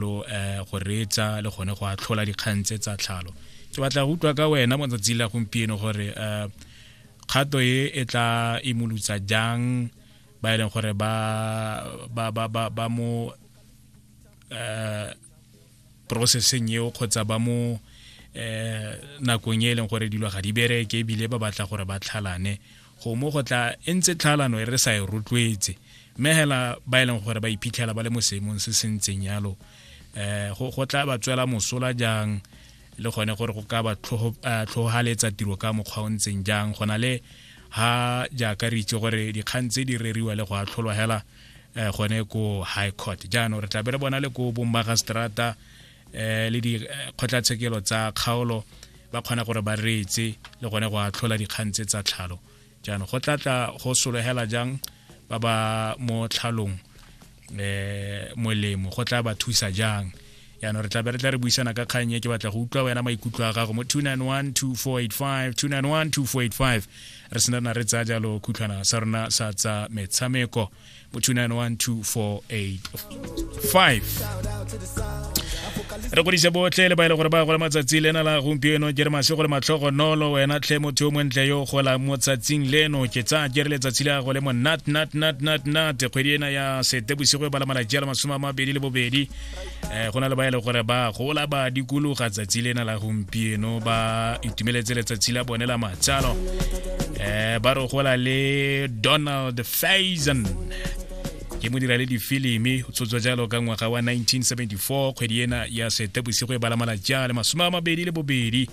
lo eh, go reetsa le gone go atlhola dikgang tse tsa tlhalo ke batla go utlwa ka wena mo tsatsi la gompieno gore eh, kgato e e tla imolutsa jang ba e leng gore ba ba ba ba, ba mo eh processing eo kgotsa ba mo eh nakong e leng gore dilo ga di bereke ebile ba batla gore ba tlhalane gomo go tla e ntse tlhalano e re sa e rotloetse mme hela ba e leng gore ba iphitlhela ba le mo seemong se se ntseng yalo eh go go tla ba tswela mosola jang le gone gore go ka ba eh, tlhogaletsa tiro ka mokgwa o ntseng jang go na le ha jaaka re itse gore dikgang tse di reriwa le go atlholwa hela eh, gone ko high court jaanong re tla be re bona le ko bommagistrata eh, le dikgotlatshekelo eh, tsa kgaolo ba kgona gore ba reetse le gone go atlhola dikgang tse tsa tlhalo jaanong go tlatla go solegela jang ba ba mo tlhalong eh molemo go tla ba thusa jang yaanong re tla be re tla re buisana ka kgang e ke batla go utlwa wena maikutlo a gago mo 2912485 2912485 re senana re tsaya jalo khutlhwana sa rona sa tsa metshameko mo 291245 re godise botlhe le ba e le gore ba gola matsatsi lena la gompieno ke re mase go le matlhogo nolo wena tlhe motho yo montle yo gola mo tsatsing leno ke tsaya ke re letsatsi le go le mo nat nat nat nat nat kgwedi ena ya sete bosigo e bala malatsi a le masome a mabedi le bobedi um go na le ba e le gore ba gola ba dikologa tsatsi lena la gompieno ba itumeletse letsatsi la bone la matsalo um ba re gola le donald faison ke mo dira le difilimi o tshotswa jalo ka ngwaga wa 1974 kgwedi ena ya sete bosigo e bala malatsi a le masome a mabedi le bobedi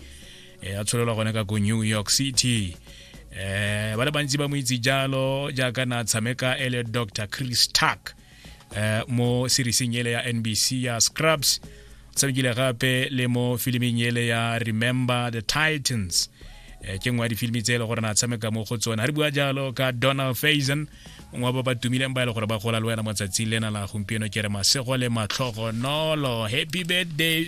um a tsholelwa gone ka ko new york city um ba le bantsi ba mo itse jalo jaaka na tshameka e le dr chris tuck eh, mo serieseng ele ya nbc ya scrubs o tshamekile gape le mo filiming ele ya remember the titans eh, ke nngwe ya difilimi tse e le gore na tshameka mo go tsone ga re bua jalo ka donald faison mongwe wa ba ba tumileng ba e le gore ba gola le wena mo tsatsing lena la gompieno ke re masego le matlhogonolo happy birthday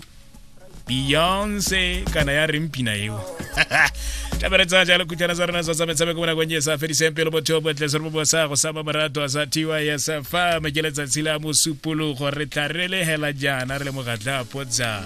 beyonce kana ya reng pina eo tabere tsa jalo khutlana tsa rona tsa tsa metshameko mona kwenye sa fediseng pelo motho bo tle se mo bosa go sa marato a sa thiwa ya sa fa me ke letsatsi la mosupologo re tla re lehela jana re le mogatla potsa